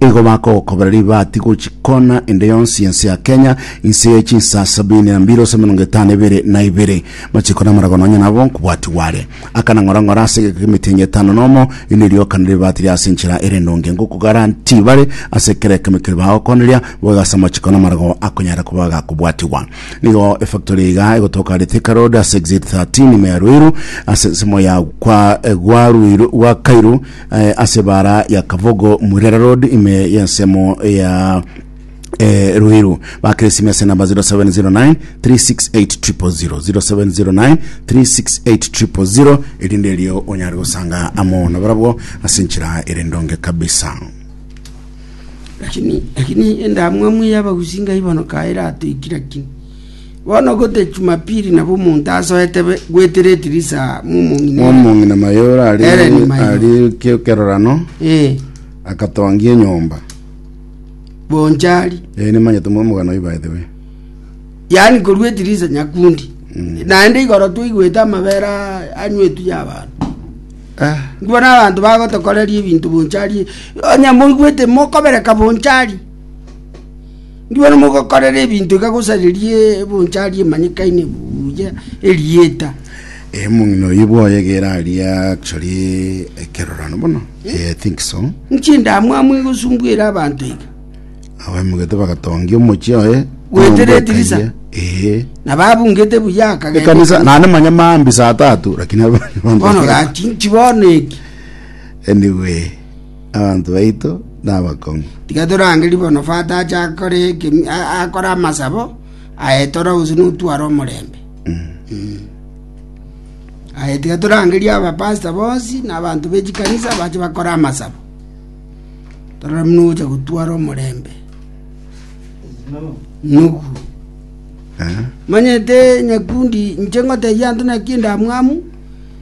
Igo bagokobera ribati gochia kona ende yonsi y'ense ya Kenya, inse ye chinsa sabini na mbili gose emerongo etano ebere na ibere. Machiko namarago nonya nabo nkobwati gware. Akana ng'ora ng'ora ase egeka k'emetenyi etano nomo, erinde rioka na ribati riase enchera ere endonge. Ngokogara nti bare ase kera ekemo keria bagokoneria, boigo ase amachiko namarago akonyara koba agakobwatigwa. Nigo efactory iga egotoka are Thika Road ase exit 13 ime ya Ruiru ase ensemo ya kwa gwa Ruiru gwa Kairu eh, ase ebara ya Kabogo Murera Road ime y'ensemo ya eh, Ruiru bakire esimi ase namba 0709 368 0709 368 erinde erio onyare gosanga amo nabarabwo ase enchera ere ndonge kabisa lakini lakini endamwamu y'abagusi ngaibonoka eratoikira kini Bono gete Jumapili nabo omonto asoete gwetera etirisa mw'omong'ina maye ore arikia ekerorano akatongia enyomba bonchari ee nimanyete omogano oyo by the way yaani korwa etirisa nyakundi mm. naende igoro twaigwete amabere anywetu ya abantu ah. ngibona abantu bagotokoreria ebinto bonchari onye moigwete mokobereka bonchari Inwe mogokorera ebinto iga gose riria ebonchari emanyekaine buya erieta. Omong'ina oyio bwoye egere aria actually ekerorano bono. Eh, I think so. Inki endamwamu egosumbuere abanto iga? Abaemogete bagatongia omochie oye. Goetera nyomba edirisa. ekaiyia. Eh. Na babungete buya akagenda Ekanisa ekanisa. naende manya maambi saa tatu lakini Bono gati inki bono eki? anyway Abanto baito nabakong'u. Tiga torangerie bono Fata ache akore ekemi- a- akore amasabo aye tore gose notware omorembe. Mm. Aye tiga torangerie abapasta bonsi na abanto be chikanisa bache bakore amasabo. Torore buna ogocha gotwara omorembe. Nugu. Eh? Manyete nyakundi inche ngotebia anto naki endamwamu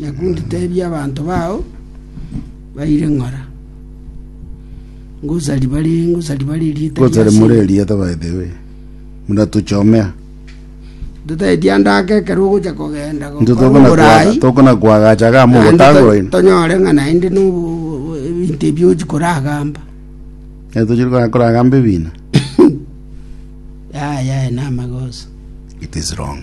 Nakundi teebia abanto bao baire ng'ora, Ngosa riba ri ngosa riba ri rieta Ngosa ria rimure Siri. erieta by the way. Muratuchomea. Totaeti andake ekero ogocha kogenda go- Nto korwa tokona Oborai, kwaga tokona kwagacha ga naende to- mogotagora ino. tonyore ng'a naende no ebinto ebi ochi koragamba. Nere tochiri konya koragamba ebina. Yaya na amagoso. It is wrong.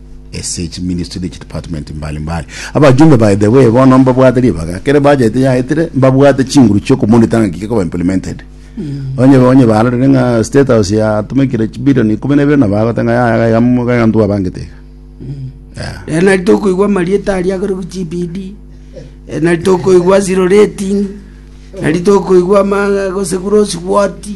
ase chiministry na chidepartment mbali mbali. Abajumbe by the way bono mbabwate ribaga ekero budget yaetire mbabwate chinguru chiokomonita ng'aki gekoba implemented onye onye barorire ng'a state house yatumekire chibilioni ikomi na ibere na bagoteba ng'a yaya gaiga mo- gaiga ntwe abangete iga Yeah. Eh, nari tokoigwa amarieta aria agore gu GBD Eh, nari tokoigwa zero rating nari tokoigwa ama- gose gross wati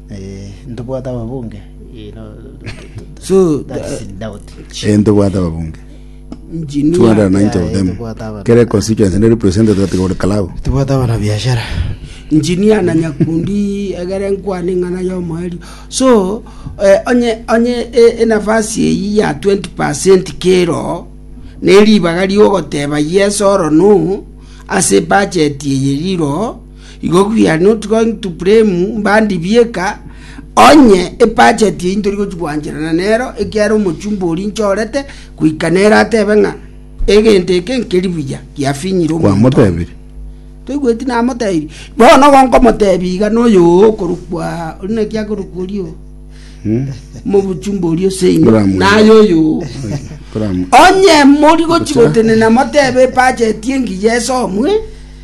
Ntobwate ababunge. So, Eh, ntobwate ababunge. engineer, 290 of them. Tubwate abana. Kere constituency ne represented that go Kalau. Tobwate abana biashara. engineer na nyakundi egere nkwane ng'ana y'omoerio so eh, onye onye e- enafasi eyi ya 20 percent kero neribaga riogoteba yes oro no ase bajeti eye riro Igo buya notiga into Puremu mbandi bieka, onye ebacheti eyio ntori gochia gwancherana nero, ekiagera omochumba oria nchorete goika nere atebe ng'a egento eke nkeri buya, giafinyire omonto oyo. Kwamotebirie? Toigweti namotebirie? Bono igo nkomotebia iga noyo oo okorokwa, ori naki akorokwa oria oo? Mobuchumba oria ase inwe, Nkoramoira. naye oyo oo. Koramu- Onye mori gochia Ocha. gotenena motebe ebacheti engiya esomwe,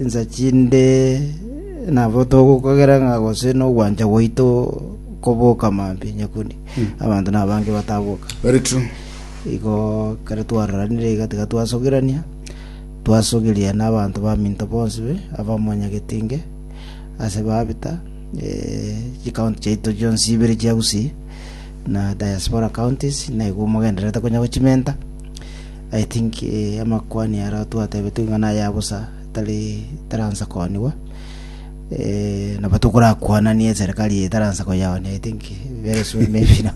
Insa chinde nabo togokogera ng'a gose nogwancha gwaito koboka mambia onye kori abanto nabange bataboka. Very true. Igo kare twararanire iga tiga twasogerania twasogeria na abanto baminto bonsi be abamonyagetinge ase babita eh, chikaunti chiaito chionsi ibere chia Gusii na diaspora counties naigo mogendererete konya gochimenta I think amakuani aro twatebetwe ng'a naye abosa tari taransa koonigwa nabo tokorakwananie eserikari eye taransa koyaonia i think very soon maybe na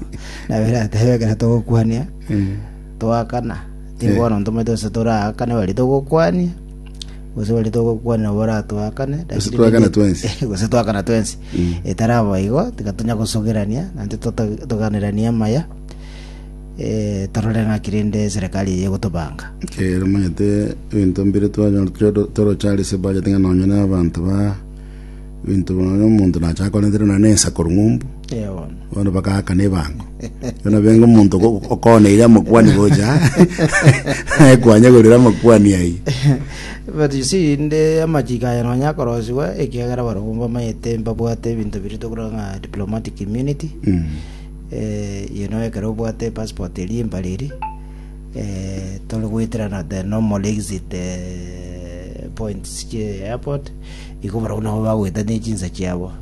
nabo eratebe ekero togokwania toakana tiga Eh. bono ntomanyete gose toraakane baria togokwania gose baria togokwania nabo baratoakane Gose toakana twensi. gose toakana twensi Mm. etaraba igo tiga tonya gosogerania naintwe tota- toganeranie amaya torore ng'aki rende Serekari eye egotobanga. Ekiagera omanyete ebinto mbire twanyora tore- toroche are ase budget ng'a nonye na abanto ba ebinto nonye omonto nachaka korentera nonye na ensa korwa ng'umbu Eh, bono. bono bagaakana ebango bono benga omonto ogo- okoneire amakwani gocha aye kwanyegorera amakwani ayio But you see, inde amachiko aya nonye akorosiwa ekiagera barabwo mbamanyete mbabwate ebinto biria tokora ng'a diplomatic immunity Mm. Inwe ekero obwate epassport eria mbare eria tore goeterana the normal exit points chie airport igo barabwo nabo bagoeta ne chinsa chiabo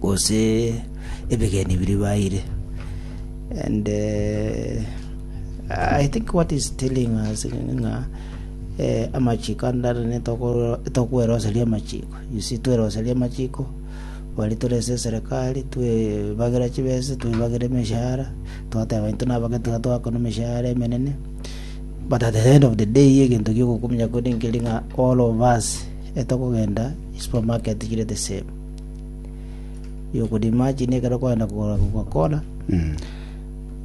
gose ebegeni biria baeire and eh, I think what is telling us ng'a eh, amachiko andarane tokoeroseria amachiko you see tweroseria amachiko Bari tore ase eserekari, twebagera chibesa, twebagera emeshahara, twateba intwe nabake tiga twakona emeshahara emenene. But at the end of the day, egento giogokumia kore nkeri ng'a all of us etokogenda supermarket chire the same. You could imagine ekero kwagenda kogora Coca-Cola,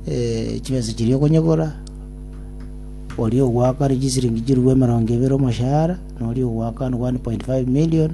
eh, chibesa chiria okonyigora, oria ogwaka chisiringi chirurwe emerongo ebere omoshahara, noria ogwaka 1.5 million,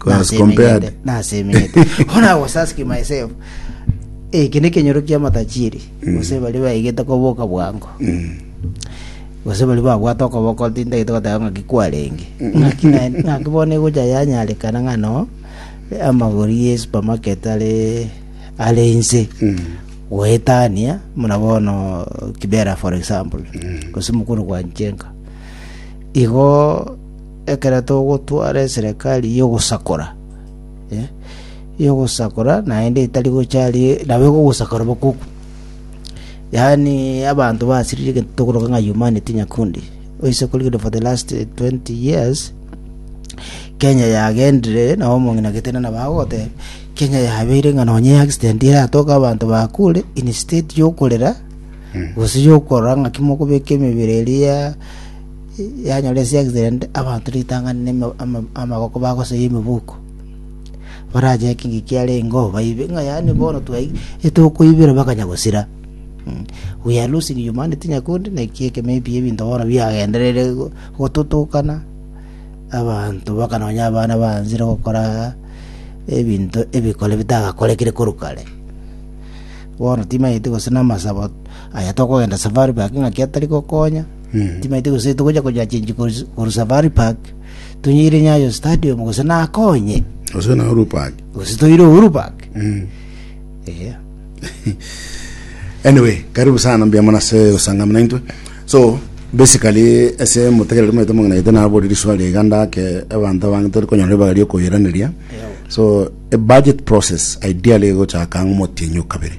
As Nase compared. emegende, nase emegende. When I was asking myself, eh, eke nekenyoro kia matachiri gose bari baigete koboka bwango gose bari babwate okoboko tintagete goteba ng'aki kwarenge ng'aki na- ng'aki bono egocha yanyarekana ng'ano eh, amagori ye supermarket are are inse goetania muna bono kibera for example gose mokoro kwa nchenka igo Ekero togotwara eserekari y'ogosakora, y'ogosakora naende etari gocha ari nabo egogosakora bokuku. Yaani abanto basirire egento tokoroka ng'a humanity nyakundi. Oise korigereria for the last 20 years, Kenya yagendire nabo omong'ina Gatene nabo agogoteba, Kenya yabeire ng'a nonye accident eratoke abanto bakure instead yokorera gose yokorora ng'aki mokobeka emebere eria yanyora ense y'Israeli abanto ritang'ani namaboko bagosoyia emibuko, barache ekiingi kiare ingo baibe, ng'a yaani bono twaigire etokoibera bakanya gosira. We are losing humanity Nyakundi, naki ekemo ekiya ebinto bono biagendereire go- gototukana, abanto mpaka nonya abana baanzire gokora ebinto ebikore bitagakorekire korwa kare. Bono timanyeti gose namasabo aya tokogenda safari baki ng'aki atari gokonya Timaete gose togocha konya chenji korwa Safari Park, tonyeire Nyayo Stadium gose nako onye, Gose na Uhuru Park. gose toire Uhuru Park. Eh. anyway karibu sana mbuya mono ase gosangama naintwe so basically ase motegereri maete mong'inaete nabori riswali iga ndake abanto abange tori konyora ribaga riokoiraneria so a budget process ideally egochaka ng'a omotienyi o kabere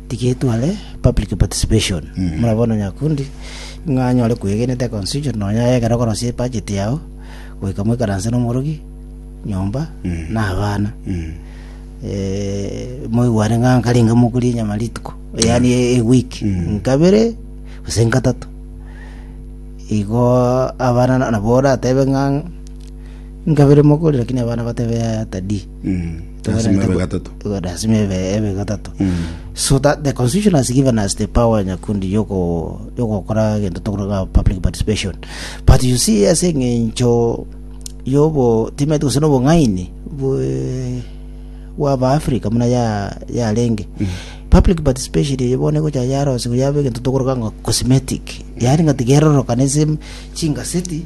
Tigetware public participation buna bono nyakundi ng'a anyore kwegena ete constitution nonya aye ekero okorosia ebudget yao goika moikaranse na omorogi nyomba na abana eh, moigwane ng'a nkare inga mokurie nyama rituko yaani e week nkabere gose nkatato igo abana na- nabo oratebe ng'a nkabere mokoria lakini abana batebe yaya tadii Mm. Lazima ibe gatato. lazima ebe ebe gatato so that the constitution has given us the power nyakundi yoko yogokora gento tokoraga public participation but you see as eng'encho yobo timete gose nobong'aini bwe- bwaba africa muna ya yarenge public participation eye bono egocha yarosirwe yaba egento tokoroka ng'a cosmetic yaani ng'a tigerorokana ase chingaseti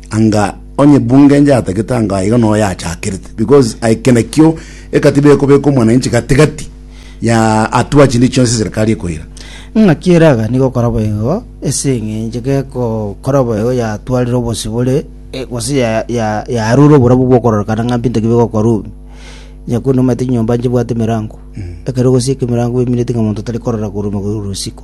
Anga onye bunge njatagete anga aiga no yachakerete, because ai kena kio ekatiba ekobeka omwananchi gati gati ya atua chinde chionsi serikali ekoira. Ng'aki eraga nigo gokora boigo, ase eng'encho gekokora boigo yatwarire obosibore eh, gose ya- ya- yarure oborabu bw'okororekana ng'a mbinto ki bigokora obi. Nyakundi omanyete chinyomba nchibwate emerango, ekero ogosieka emerango bemineti ng'a monto tari korora korwa omogori korwa isiko.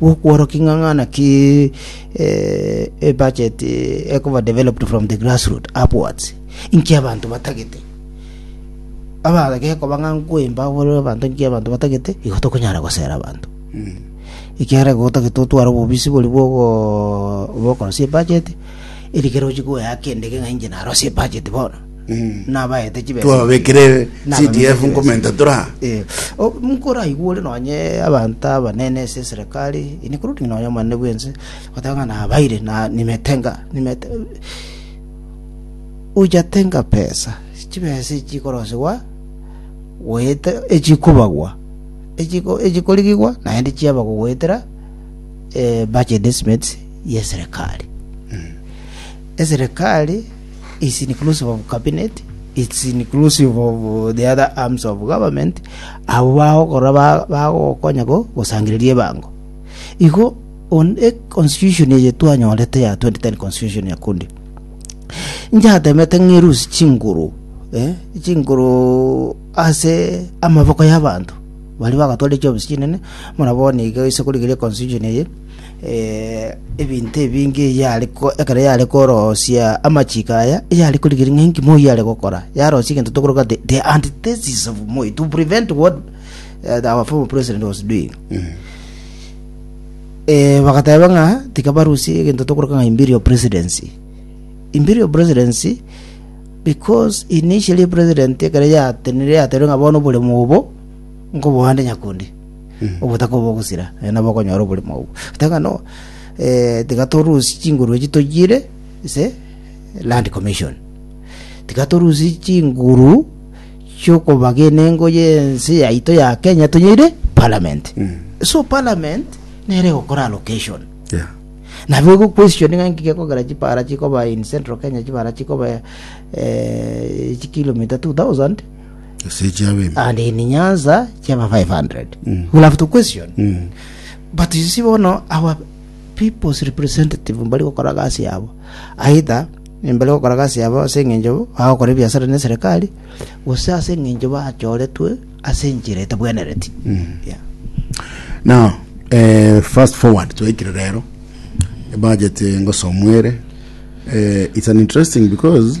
gwokworokia ng'a ng'a naki eh, a budget eh, ekoba developed from the grassroot upwards inki abanto batagete abagekoba ng'a nkwemba bore abanto inki abanto batagete igo tokonyara gosera abanto ekiagera igo togete gotwara obobisi bori bwogo bokorosia ebudget eri kero ochie koyaka endege ng'a inche narosie ebudget bono nabaete chibesa twababekire CDF nkomenta chibesa. tora Eh, o- nkoraigure nonye abanto abanene ase eserekari including nonye omonene bwense goteba ng'a nabaire na nimete nga nimete ochatenga pesa chibesa echi chikorosigwa goeta echikobagwa echiko echikorigigwa naende chiaba gogoetera eh, budget estimates yeserekari eserekari is inclusive of cabinet, it's inclusive of uh, the other arms of government, abo bagokora ba- bagokonya go gosangereria ebango. Igo on e constitution eye twanyorete ya 2010 constitution ya kundi njatemete ng'erusi chinguru eh, chinguru ase amaboko y'abanto bari bagatwara echobisi chinene muna bono iga ase korigeria constitution eye ebinto ebinge eyio are ko- ekero yare korosia amachiko aya, eyare korigereria ng'a enki moyo are gokora. Yarosia egento tokoroka ase the antithesis of Moi, to prevent what eh, the- our former president was doing. Eh, bagateba ng'a tiga barusie egento tokoroka ng'a imperial presidency. Imperial presidency, because initially president ekero yatenire yaterire ng'a bono oboremo obo, nkoboande nyakundi. obotaku obo bogosira, eh, nabo okonyora oborimo obwo. Gete ng'a no, eh, tiga torusie chinguru echi toyire ase land commission. Tiga torusie chinguru chiokobagena engo y'ense yaito ya Kenya tonyeire parliament. So parliament nere egokora allocation. Yeah. nabo egokwestioni ng'a nki gekogera chipara chikoba in central kenya chibara chikoba eh, chikilomita 2000 Ase chiabe ime. and in nyanza chiaba 500 Mm. we'll have to question Mm. but you see bono our people's representative mbari gokora gasi yabo aitha mbari gokora gasi yabo ase eng'encho bagokora ebiasara ne serikali gose ase eng'encho bachoretwe ase enchera etabwenereti Yeah. Now, eh, fast forward twaikire rero budget ngosomwere eh, it's an interesting because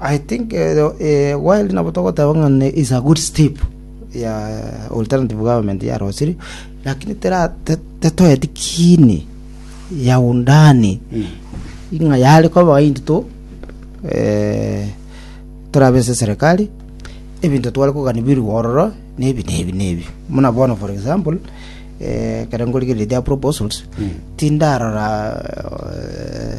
I think while nabo togoteba ng'a is a good step ya alternative government yarosirie lakini tera te- tetoeti kini ya undani ing'a yare koba into to eh, torabe ase serikali ebinto tware kogani birwe ororo na ebi na ebi na ebi muna bono for example eh, ekero nkorigereria their proposals tindarora eh,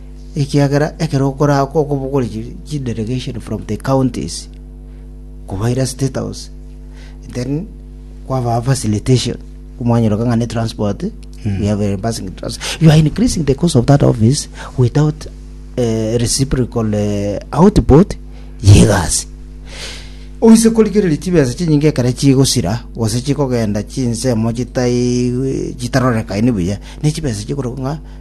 ekiagera ekero okoraaka okobokore chi- chidelegation from the counties, kobaira State House, then kwabaa facilitation, komwanyeroka ng'a ne transport, we have a passing trans- You are increasing the cost of that office without eh, reciprocal eh, output yegasi oise korigereria chibesa chinyinge ekere chigosira gose chikogenda chinsemo chitai chitarorekaini buya ne chibesa chikorokwa ng'a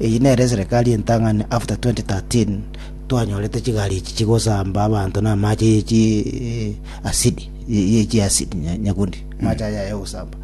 Eyio nere eserekari entang'ani after 2013 twanyorete chigari echi chigosamba abanto na amache ye chi asidi ye chi asidi nyakundi amache aya ye gosamba